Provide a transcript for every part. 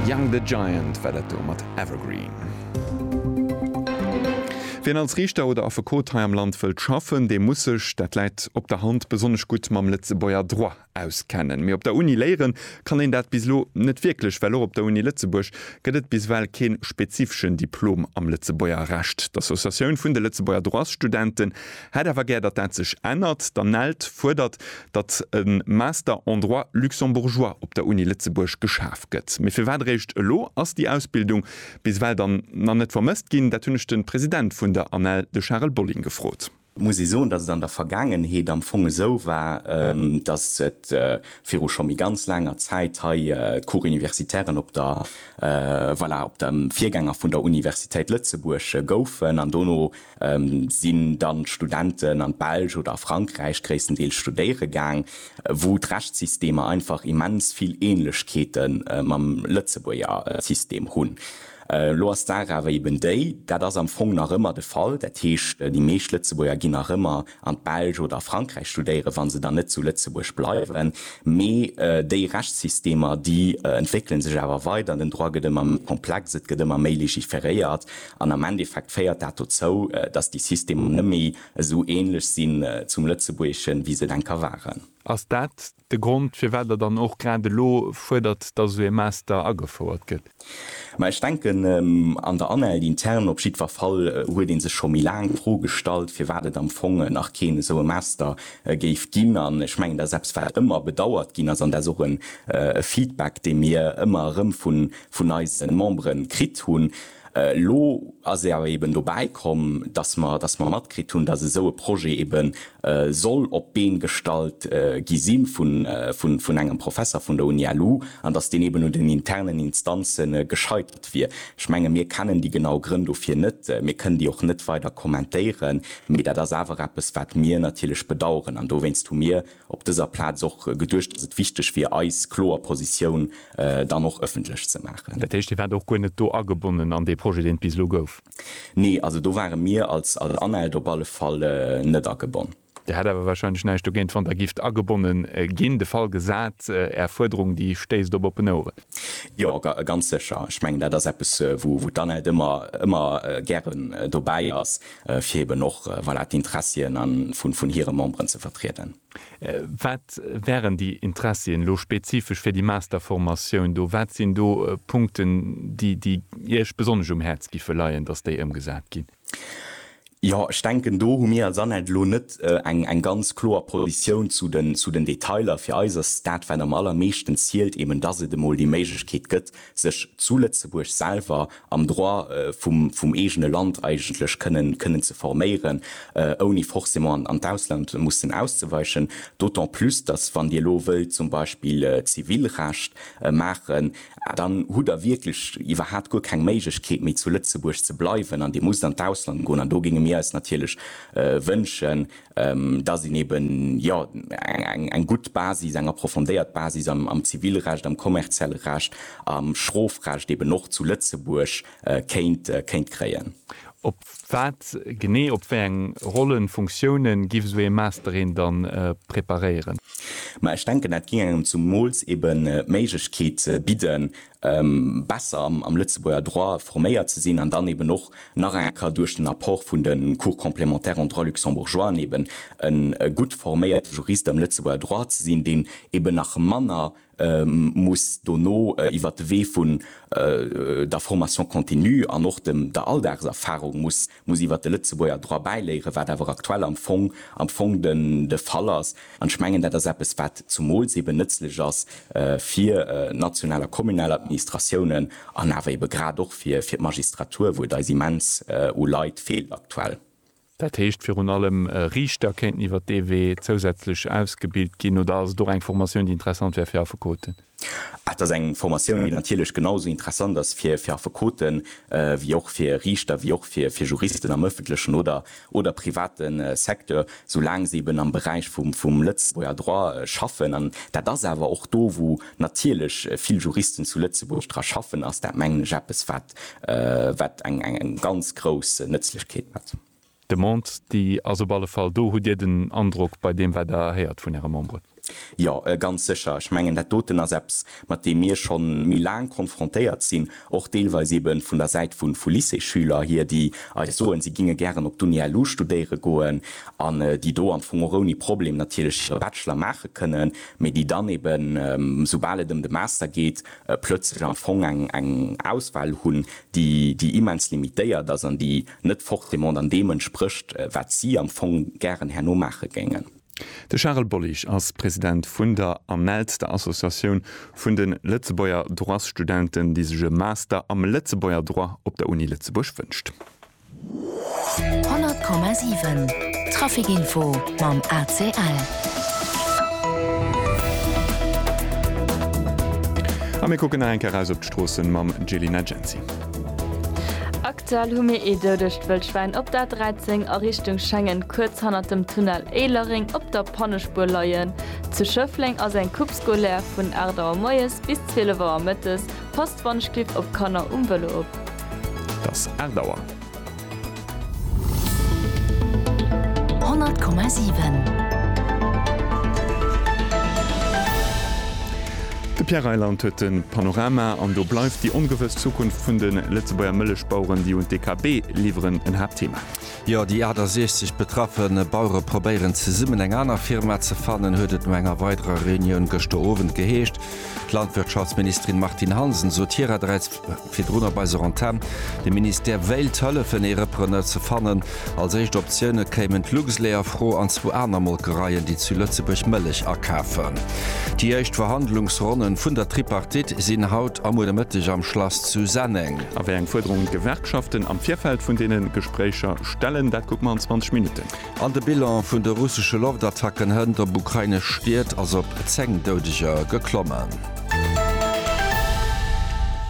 Young the Giant war dat do mat Evergreen. Wien als Riichter oder Affekot hei am Land wëllt schaffen, dee muss sech, dat läit op der Hand, besonnesch gutt mam Lëtzebuerger Droit auskennen. Mee op der Uni léiere kann een dat bis elo net wierklech, well och op der Uni Lëtzebuerg gëtt et bis ewell kee spezifeschen Diplom am Lëtzebuerger Recht. D'Associatioun vun de Lëtzebuerger Droitsstudenten, Hätt awer gär, datt dat sech ännert. D'ANELD fuerdert, datt e Master en droit luxembourgeois op der Uni Lëtzebuerg geschaf gëtt. Mee firwat eréischt elo? Ass déi Ausbildung bis ewell dann nach net vermësst ginn? Dat hunn ech de President vun der ANELD, de Charel Bolling, gefrot. Muss ee soen, datt et an der Vergaangenheet am Fong esou war, datt et viru scho méi ganz laanger Zäit hei d'Cours universitairen op der, voilà, op dem Virgänger vun der Universitéit Lëtzebuerg goufen an dono Sinn dann d'Studenten an d'Belsch oder a Frankräich gréisstendeels studéiere gaang, wou d'Rechtssystemer einfach immens vill Ähnlechkeete mam Lëtzebuerger System hunn. Elo ass d'Saach awer eben déi, dat ass am Fong nach ëmmer de Fall, dat heescht déi meescht Lëtzebuerger ginn nach ëmmer an d'Belsch oder a Frankräich studéieren, wa se dann net zu Lëtzebuerg bleiwen. Mee déi Rechtssystemer, déi entwéckele sech awer weider, den Droit gëtt ëmmer méi komplex, et gëtt ëmmer méi legiferéiert. An am Endeffekt féiert dat dozou, dass déi Systemer net méi esou ähnlech sinn zum Lëtzebuergeschen, wéi se et eng Ka waren. Ass dat de Grond, firwat Der dann och grad elo fuerdert, dass esou ee Master agefouert gëtt? Ma ech denken, an der Anhalt interne op jiddwer Fall huet ee sech scho méi laang d'Fro gestallt, firwat et am Fong nach keen esou e Master géif ginn. An ech mengen, dass eppes, wat ëmmer bedauert ginn ass, an dat ass och e Feedback, dee mir ëmmer erëm vun eise Membere kritt hunn, Elo ass ee awer eben dobäi komm, dass mer, dass mer matkritt hunn, dass esou e Projet ebe soll op d'Been gestallt gi si vun, vun, vun engem Professer vun der UniLu an dass deen eben un den internen Instanze gescheitert wier. Ech menge mir kennen déi genau Grënn dofir net, mir kënnen déi och net weider kommentéieren, mee dat ass awer eppes, wat mir natierlech bedauern an dowéinst hu mir, op dëser Plaz och geduecht, dass et wichteg wier, eis kloer Positioun dann och ëffentlech ze maachen. Dat heescht, Dir waart och guer net do agebonnen an dee Projet, deen et bis elo gouf? Nee, also do ware mir als ANELD op alle Fall net agebonn. Dir hätt awer warscheinlech näischt dogéint, wann Der gifft agebonne ginn, de Fall gesat, Är Fuerderung, déi stéisst op oppen Oueren? Jo, ganz sécher. Ech mengen, dat ass eppes, wou d'ANELD ëmmer gären dobäi ass, fir eben och voilà, d'Interessien vun hire Memberen ze vertrieden. Wat wären déi Interessien elo spezifesch fir déi Masterformatioun do? Wat sinn do Punkten, déi Iech besonnesch um Häerz géife leien, dass déi ëmgesat ginn? Jo, ech denken do hu mir als ANELD elo net eng ganz kloer Positioun zu den Detailer. Fir eis ass dat, wat am allermeeschten zielt, eben dass et emol déi Méiglechkeet gëtt, sech zu Lëtzebuerg selwer am Droit vum eegene Land eigentlech kënnen ze forméieren, ouni forcément an d'Ausland mussen auszeweichen. D'autant plus, datt, wann Dir elo wëllt zum Beispill Zivilrecht maachen, dann hutt Der wierklech iwwerhat guer keng Méiglechkeet méi zu Lëtzebuerg ze bleiwen an Dir musst an d'Ausland goen. An do géinge mir eis natierlech wënschen, dass een eben, jo, eng gutt Basis, eng approfondéiert Basis am Zivilrecht, am kommerzielle Recht, am Strofrecht eben och zu Lëtzebuerg kéint kréien. Op wat genee, op wéi eng Rollen, Funktiounen giff esou ee Master een dann preparéieren? Ma ech denken, dat géing engem zumools eben d'Méiglechkeet bidden, besser am Lëtzebuerger Droit forméiert ze sinn an dann eben och nach eng Kéier duerch den Apport vun de Cours complémentaires en droit luxembourgeois an eben e gutt forméierte Jurist am Lëtzebuerger Droit ze sinn, deen eben nach manner muss dono iwwert de Wee vun der Formation continue an och der Alldagserfahrung muss muss iwwert de Lëtzebuerger Droit bäiléieren, wat awer aktuell am Fong, am Fong de, de Fall ass. An ech mengen, dat ass eppes, wat zumools eeben nëtzlech ass fir national a kommunal Administratiounen an awer eebe grad och fir, fir d'Magistratur, wou et eis immens u Leit feelt aktuell. Dat heescht, virun allem Riichter kéinten iwwert dee Wee zousätzlech ausgebilt ginn, oder ass et och eng Formatioun, déi interessant wär fir Affekoten? Et ass eng Formatioun, déi natierlech genau esou interessant ass fir Affekoten, wéi och fir Riichter, wéi och fir Juristen am ëffentlechen oder oder private Secteur, soulaang se eben am Beräich vum Lëtzebuerger Droit schaffen. An dat ass awer och do, wou natierlech vill Juristen zu Lëtzebuerg dra schaffen, ass dat, mengen ech, eppes, wat eng ganz grouss Nëtzlechkeet huet. D'Demande, déi ass op alle Fall do. Hutt Dir den Androck, bei deem wat Der héiert vun Äre Memberen? Jo, ganz sécher. Ech mengen, dat doten ass eppes, mat deem mir scho méi laang konfrontéiert sinn, och deelweis ebe vun der Säit vu Lycéesschüler hier, déi eis soen, si géinge gären op d'UNILU studéiere goen an déi do am Fong och ouni Problem natierlech hire Bachelor maache kënnen, mee déi dann eben, soubal et ëm de Master geet, plötzlech am Fong eng Auswahl hunn, déi immens limitéiert ass an déi net forcément dann deem entsprécht, wat si am Fong gären herno maache géingen. De Charel Bollig ass President vun der ANELD, der Associatioun vun de Lëtzebuerger Droitsstudenten, déi sech e Master am Lëtzebuerger Droit op der Uni Lëtzebuerg wënscht. 100,7 Traficinfo mam ACL. A mir kucken nach eng Kéier eraus op d'Stroossen mam Gelina Genzi. Aktuell hu mir ee doudegt Wëllschwäin op der 13 a Richtung Schengen kuerz hannert dem Tunnel Éilereng op der Pannespuer leien. Zu Schëffleng ass eng Coupe scolaire vun 8 Auer moies bis 12 Auer mëttes. Passt wann ech gitt op Kanner um Vëlo op. Et ass 8 Auer. 100,7. De Pierre Reyland huet de Panorama an do bleift déi ongewëss Zukunft vun de Lëtzebuerger Mëllechbaueren, déi un d'EKB liwweren, en Haaptthema. Jo, déi 68 betraffe Bauere probéieren zesummen eng aner Firma ze fannen, huet et no enger weiderer Reunioun gëschter Owend geheescht. D'Landwirtschaftsministerin Martine Hansen sot hirerderäits, Virdrun op eiser Antenn, De Ministère wéilt hëllefen ee Repreneur ze fannen. Als éischt Optioune kéimen d'Luxlait a Fro an zwou aner Molkereien, déi zu Lëtzebuerg Mëllech akafen. Déi éischt Verhandlungsronnen vun der Tripartite sinn haut a muer de Mëtteg am Schlass zu Senneng. A wéi eng Fuerderungen d'Gewerkschaften am Virfeld vun deene Gespréicher stellen, dat kucke mer an 20 Minutten. An de Bilan vun de russesche Loftattacken hënt op ukrainesch Stied ass op 10 Doudeger geklommen.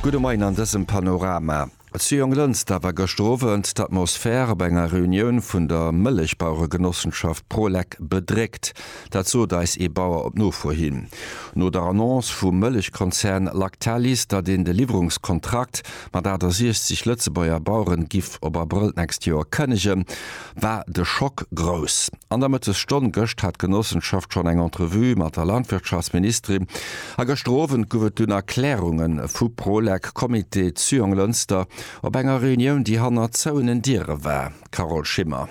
Gudde Moien an dësem Panorama. Zu Jonglënster war gëschter Owend d'Atmosphär op enger Reunioun vun der Mëllechbaueregenossenschaft Prolec bedréckt. Dat sot eis ee Bauer op Nofro hin. No der Annonce vum Mëllechkonzern Lactalis, datt een de Liwwerungskontrakt mat 68 Lëtzebuerger Baueren giff op Abrëll d'nächst Joer kënnegen, war de Schock grouss. An der Mëttesstonn gëscht hat d'Genossenschaft schonn eng Entrevue mat der Landwirtschaftsministerin a gëschter Owend gouf et dunn Erklärunge vu Prolec, Comité Zyon-Lënster op enger Reunioun, déi hannert zouenen Diere war. Carole Schimmer.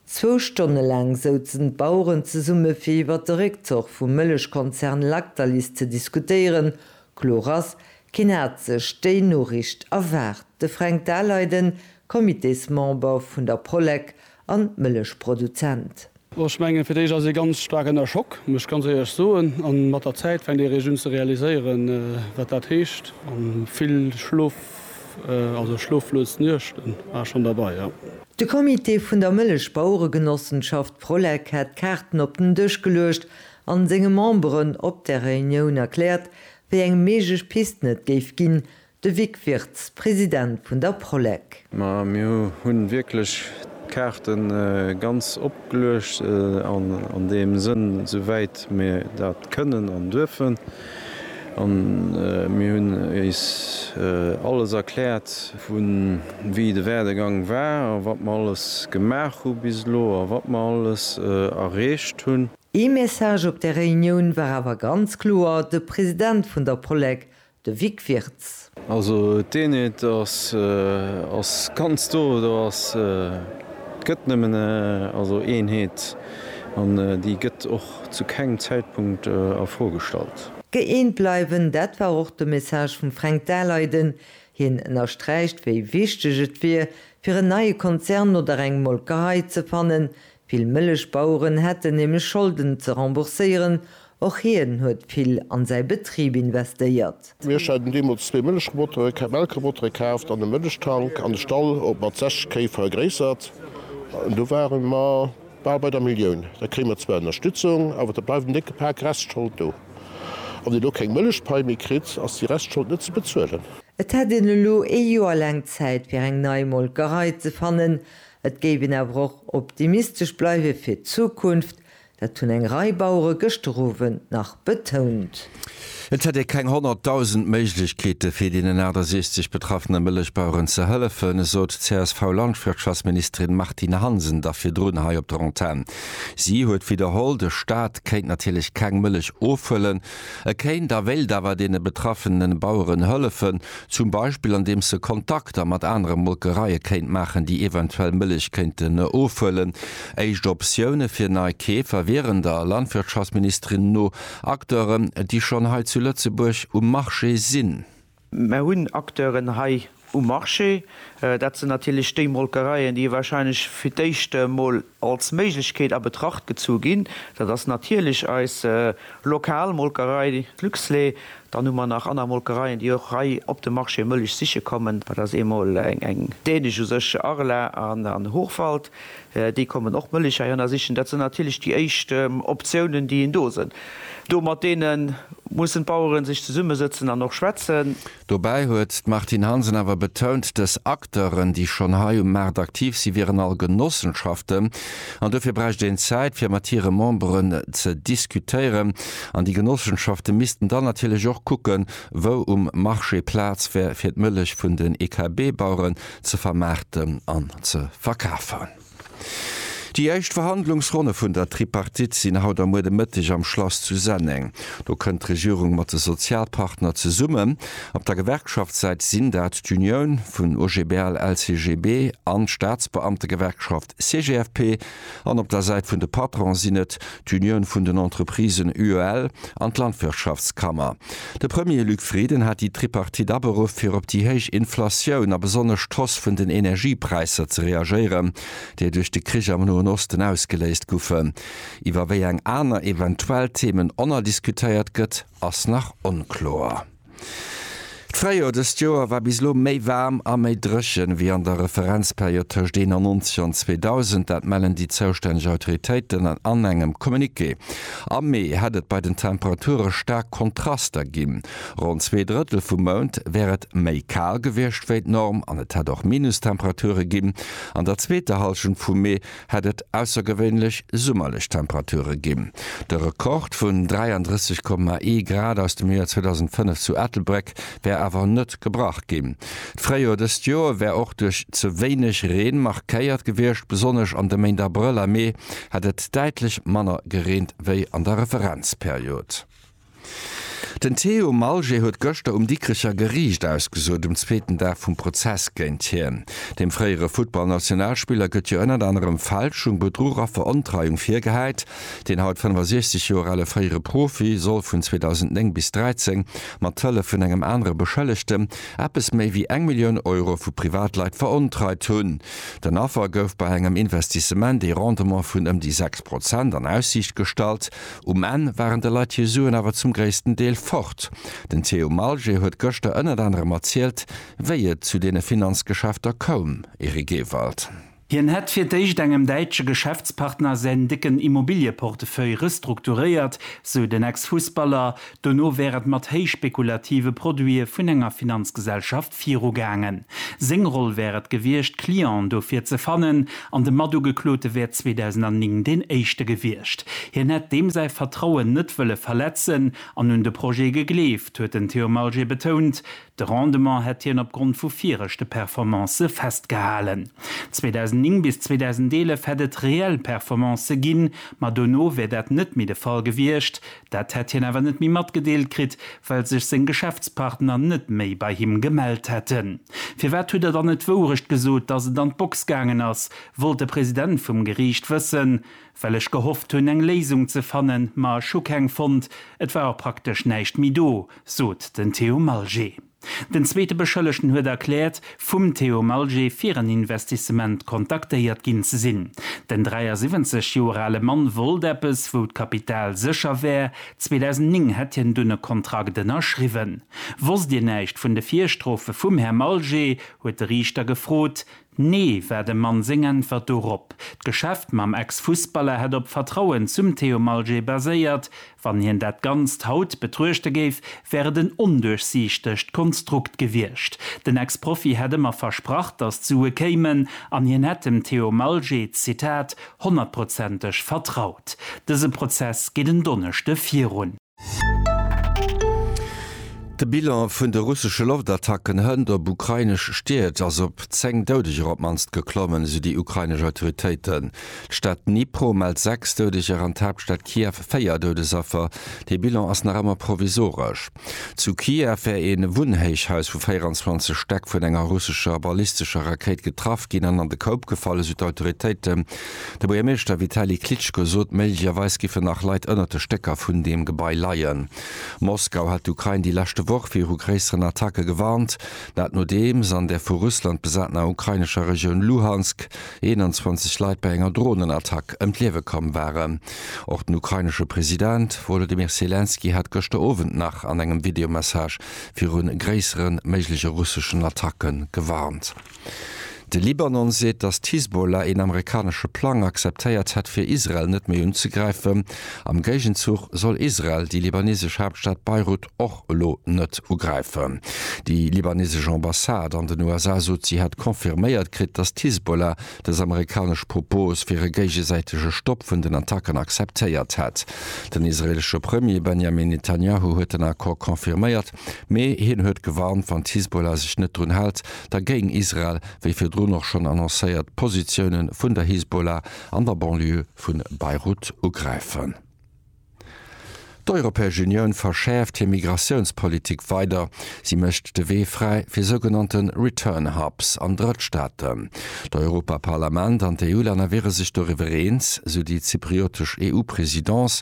Zwou Stonne laang souzen d'Baueren zesumme fir iwwert de Réckzoch vum Mëllechkonzern Lactalis ze diskutéieren. Kloer ass, Keen hat sech déi Noriicht erwaart. De Fränk Daleiden, Comitésmember vun der Polek an Mëllechproduzent. Oh, ech mengen, fir d'éischt ass ee ganz staark ënner Schock, muss ech ganz éierlech soen. An mat der Zäit fänkt ee réischt un ze realiséieren, wat dat heescht. An vill Schlof, also schloflos Nuechten war schonn derbei, jo. De Comité vun der Mëllechbaueregenossenschaft Prolek hat d'Kaarten op den Dësch geluecht an senge Memberen op där Reunioun erkläert, Wéi eng méiglech Pisten et géif ginn, de Vic Wirtz, President vun der Prolec. Ma mir hu wierklech d'Kaarte ganz opgeluecht an deem Sënn, esou wäit mir dat kënnen an duerfen. A mir hunn iis alles erkläert, vu wéi de Werdegang war a wat mer alles gemaach hu bis elo a wat mer alles erreecht hunn. Ee Message op där Reunioun war awer ganz kloer de President vun der Polec, de Vic Wirtz. Also d'Eenheet ass ganz do, do ass, et gëtt nëmmen also Eenheet an déi gëtt och zu kengem Zäitpunkt a Fro gestallt. Gëeent bleiwen, dat war och de Message vum Fränk Daleiden. Hien ënnersträicht, wéi wichteg et wier, fir en neie Konzern oder eng Molkerei ze fannen, Vill Mëllechbaueren hätten nämlech Scholden ze rembourséieren, och hien huet vill an säi Betrib investéiert. Mir haten deemools zwee Mëllechrobotere, Melkrobotere kaaft an e Mëllechtank an de Stall op mat 60 Kéi vergréissert. An do ware mer bal bei der Millioun. Da kréie mer zwar Ënnerstützung, awer da bleift en décke Pak Restschold do. A wann een elo keng Mëllechpai méi kritt, ass déi Restschold net ze bezuelen. Et hätt een elo ee Joer laang Zäit, fir eng nei Molkerei ze fannen, Et géif een awer och optimistesch bleiwe fir d'Zukunft, dat hunn eng Rei Bauere gëschter Owend nach betount. Et hätt ee keng 100.000 Méiglechkeete fir deenen 68 betraffene Mëllechbaueren ze hëllefen, esot d'CSV-Landwirtschaftsministerin Martine Hansen da virdrun hei op der Antenn. Si huet widderholl, de Staat kéint natierlech keng Mëllech ofhëllen. E kéint a wéilt awer deene betraffene Baueren hëllefen, zum Beispill andeems e Kontakter mat anere Molkereie kéint maachen, déi eventuell Mëllech kéinten ofhuelen. Éischt Optioune fir nei Keefer wieren der Landwirtschaftsministerin no Acteuren, déi schonn hei zu Lëtzebuerg um Marché sinn. Mer hunn Acteuren hei um Marché, dat sinn natierlech déi Molkereien, déi wahrscheinlech fir d'éischt emol als Méiglechkeet a Betracht gezu ginn. Dat ass natierlech eis lokal Molkerei Luxlait. Dann hu mer nach aner Molkereien, déi och hei op de Marché Mëllech siche kommen. Dat ass eemol eng dänesch, u sech Arla an Hochwald. Déi kommen och mëllig hei hanner sichen. Dat sinn natierlech déi éischt Optiounen, déi een do sënn. Do mat deene mussen d'Baueren sech zesummesëtzen an och schwätzen. Dobäi huet d'Martine Hansen awer betount, dës Acteuren, déi schonn hei um Maart aktiv sinn, wieren all Genossenschaften an dofir bräicht een Zäit, fir mat hire Memberen ze diskutéieren. An déi Genossenschafte missten dann natierlech och kucken, wou um Marché Plaz wär fir d'Mëllech vun den EKB-Baueren ze vermaarten an ze verkafen. Déi éischt Verhandlungsronne vun der Tripartite sinn haut a muer de Mëtteg am Schlass zu Senneng. Do kënnt d'Regierung mat de Sozialpartner zesummen. Op der Gewerkschaftssäit sinn dat d'Unioun vun OGBL, LCGB an d'Staatsbeamtegewerkschaft. CGFP an op der Säit vun de Patronen sinn et d'Unioun vun den Entreprisen, UEL, an d'Landwirtschaftskammer. De Premier Luc Frieden hat déi Tripartite aberuff fir op déi héich Inflatioun a besonnesch d'Hoss vun den Energiepräisser ze reagéieren, déi duerch de Krich am Noen Osten ausgeléist goufen. Iwwer wéi eng aner eventuell Themen onnerdiskutéiert gëtt, ass nach onkloer. D'Fréijoer dëst Joer war bis elo méi waarm a méi dréchen, wéi an der Referenzperiod tëscht 91 an 2000. Dat mellen déi zoustänneg Autoritéiten an engem Communiqué. Am Mee hätt et bei den Temperature staark Kontraster ginn, Ronn zwee Drëttel vum Mount wär et méi kal gewiescht wéi d'Norm an et hätt och Minustemperature ginn an der zweeter Hallschent vum Mee. hätt et aussergewéinlech summerlech Temperature ginn. De Rekord vun 33,1 Grad aus dem Joer 2005 zu Ettelbréck wär awer net gebrach ginn. D'Fréijoer dëst Joer wär och duerch ze wéineg Reen markéiert gewiescht, besonnesch an de Méint Abrëll a Mee hätt et däitlech manner gereent wéi an der Referenzperiod. Den Théo Malger huet gëschter um Dikrecher Geriicht ausgesot, um zweeten Dag vum Prozess géint hien. Dem fréiere Futtballnationalspiller gëtt jo ënnert anerem Fälschung, Bedruch a Verontreiung virgehäit. Deen haut 65 Joer ale fréiere Profi soll vun 2009 bis 2013 mat Hëllef vun engem anere Beschëllegte eppes méi wéi eng Millioun Euro vu Privatleit verontreit hunn. Den Affer gouf bei engem Investissement ee Rendement vun ëm déi 6 Prozent an Aussiicht gestallt. Um Enn waren de Leit hir Suen awer zum gréissten Deel fort. Den Theo Malger huet gëschter ënnert anerem erzielt, wéi et zu deene Finanzgeschäfter koum. Eric Ewald. Hien hätt fir d'éischt engem däitsche Geschäftspartner säin décken Immobilieportefeuille restrukturéiert, sou den Ex-Fussballer. Dono wär et mat héich spekulative Produite vun enger Finanzgesellschaft virugaangen. Seng Roll wär et gewiescht, Clienten dofir ze fannen, an de Matugeklote wär 2009 deen éischte gewiescht. Hien hätt deem säi Vertrauen net wëlle verletzen an un de Projet gegleeft, huet den Theo Malger betount. De Rendement hätt hien opgrond vu viregte Performancë festgehalen. 2009 bis 2011 hätt et reell Performancë ginn, ma dono wär dat net méi de Fall gewiescht, Dat hätt hien awer net méi matgedeelt kritt, well sech seng Geschäftspartner net méi bei him gemellt hätten. Firwat hutt Der dann net d'Wourecht gesot, datt et an d'Box gaangen ass? wollt de President vum Geriicht wëssen. Well ech gehofft hunn, eng Léisung ze fannen, ma ech hu keng fonnt. Et war och praktesch näischt méi do, sot den Theo Malger. Den zweete Beschëllegten huet erkläert, vum Theo Malger fir en Investissement kontaktéiert ginn ze sinn. Den 73 Joer ale Mann wollt eppes, wou d'Kapital sécher wär. 2009 hätt hien dunn e Kontrakt ënnerschriwwen. Wosst Dir näischt vun de Virstrofe vum Här Malger? huet de Riichter gefrot. Nee, war dem Mann seng Äntwert dorop. D'Geschäft mam Ex-Fussballer hätt op Vertrauen zum Theo Malget baséiert. Wann hien dat Ganzt haut betruechte géif, wär et en onduerchsiichtegt Konstrukt gewiescht. Den Ex-Profi hätt ëmmer versprach, datt d'Sue kéimen an hien hätt dem Theo Malget, Zitat, honnertprozenteg vertraut. Dëse Prozess geet en Donneschde virun. De Bilan vun de russesche Loftattacken hënt op ukrainesch Stied ass op 10 Doudeger op mannst geklommen, esou déi ukrainesch Autoritéiten. D'Stad Dnipro mellt 6 Doudeger an d'Haaptstad Kiew 4 Doudesaffer. Dee Bilan ass nach ëmmer provisoresch. Zu Kiew wär ee Wunnhéichhaus vu 24 Stäck vun enger russescher ballistescher Rakéit getraff ginn an an de Koup gefall, esou d'Autoritéiten. De Buergermeeschter Vitali Klitschko sot, méiglecherweis giffen nach Leit ënnert de Stécker vun deem Gebai leien. Moskau hat d'Ukrain déi leschte Woch viru gréisseren Attacke gewarnt. Dat nodeems an der vu Russland besatener ukrainescher Regioun Luhansk 21 Leit bei enger Dronenattack ëm d'Liewe komm waren. Och den ukrainesche President Wolodymyr Selenskyj hat gëschter Owend nach an engem Videomessage viru gréissere méigleche russeschen Attacke gewarnt. De Libanon seet, datt d'Hisbollah een amerikanesche Plang akzeptéiert hätt, fir Israel net méi unzegräifen. Am Géigenzuch soll Israel déi libanesesch Haaptstad Beirut och elo net ugräifen. Déi libanesesch Ambassade an den USA sot, si hätt confirméiert kritt, datt d'Hisbollah dës amerikanesch Propos fir e géigesäitege Stopp vun den Attacken akzeptéiert hätt. Den israeelesche Premier Benjamin Netanyahu huet den Accord confirméiert. Mee hien huet gewarnt, wann d'Hisbollah sech net drun hält, da géing Israel, wéi virdrun och schonn annoncéiert, d'Positioune vun der Hisbollah an der Banlieue vu Beirut ugräifen. D'Europäesch Unioun verschäerft hir Migratiounspolitik weider. Si mécht de Wee fräi fir sougenannte Return Hubs an Drëttstaaten. D'Europaparlament an d'EU-Länner wiere sech doriwwer eens, esou déi zypriotesch EU-Presidence.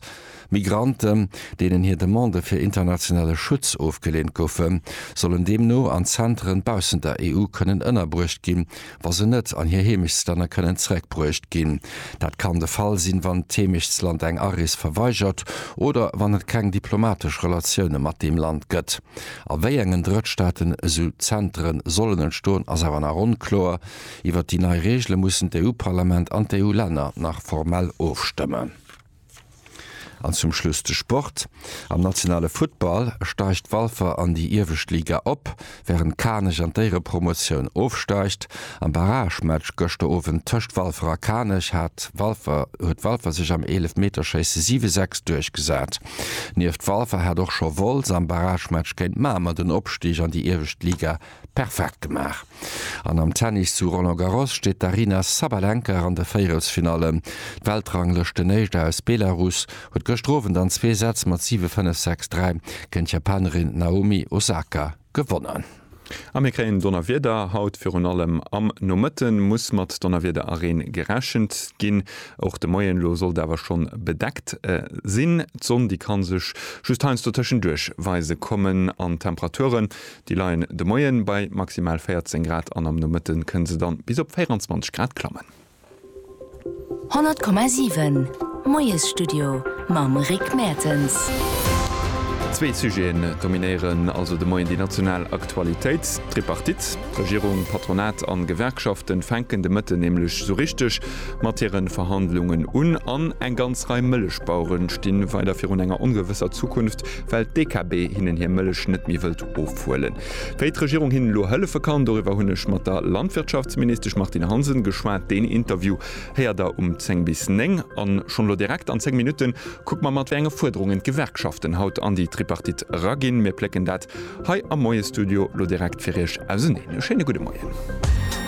Migranten, deenen hir Demande fir internationale Schutz ofgeleent goufen, sollen deemno an Zenteren baussent der EU kënnen ënnerbruecht ginn, wa se net an hir Heemechtslänner kënnen zeréckbruecht ginn. Dat kann de Fall sinn, wann d'Heemechtsland eng Arees verweigert oder wann et keng diplomatesch Relatioune mat deem Land gëtt. A wéi engen Drëttstaaten esou Zentere sollen entstoen, ass awer nach onkloer. Iwwert déi nei Reegele mussen d'EU-Parlament an d'EU-Länner nach formell ofstëmmen. An zum Schluss de Sport. Am nationale Futtball steigt Walfer an déi iewescht Liga op, wärend Kanech an d'Éierepromotioun ofsteigt. Am Barragematch gëschter Owend tëscht Walfer a Kanech hat Walfer huet Walfer sech am Eelefmeterschéisse 7, 6 duerchgesat. Nieft Walfer hat och scho Wolz am Barragematch géint Mamer den Opstig an déi iewescht Liga Perfekt gemaach! An am Tennis zu Roland Garros steet d'Aryna Sabalenka an de Véierelsfinallen. D'Weltranglëschtenéischt aus Belarus huet gëschter Owend an zwee Sätz mat 7, 5, 6, 3 géint d'Japanerin Naomi Osaka gewonnen. A mir kréien Donnerwieder haut. Virun allem am Nomëtte muss mat Donnerwieder a Reen gerechent ginn. Och de Moien elo sollt awer schonn bedeckt sinn. D'Sonn, déi ka sech just heiansdo tëschenduerch weise kommen an d'Temperature Déi leien de Moie bei maximal 14 Grad an am Nomëtte kënne se dann bis op 24 Grad klammen. 100,7 Moiesstudio mam Rick Mertens. Zwee Sujeten dominéieren also de Moien déi national Aktualitéit. D'Tripartite, Regierung, Patronat an Gewerkschaften, fänken de Mëtten nämlech sou richteg mat hiren Verhandlungen un an eng ganz Rei Mëllechbaueren stinn weider virun enger ongewësser Zukunft. well d'DKB hinnen hir Mëllech net méi wëllt ofhuelen. Wéi d'Regierung hinnen elo hëllefe kann, doriwwer hunn ech mat der Landwirtschaftsministesch Martine Hansen geschwat. Deen Interview héiert der um 10 bis 9. An schonn elo direkt an 10 Minutte kucke mer mat wéi enge Fuerderungen d'Gewerkschaften haut an déi Tripartite eraginn. Mir plécken dat hei am Moie-Studio elo direkt fir Iech auseneen. E schéine gudde Moien.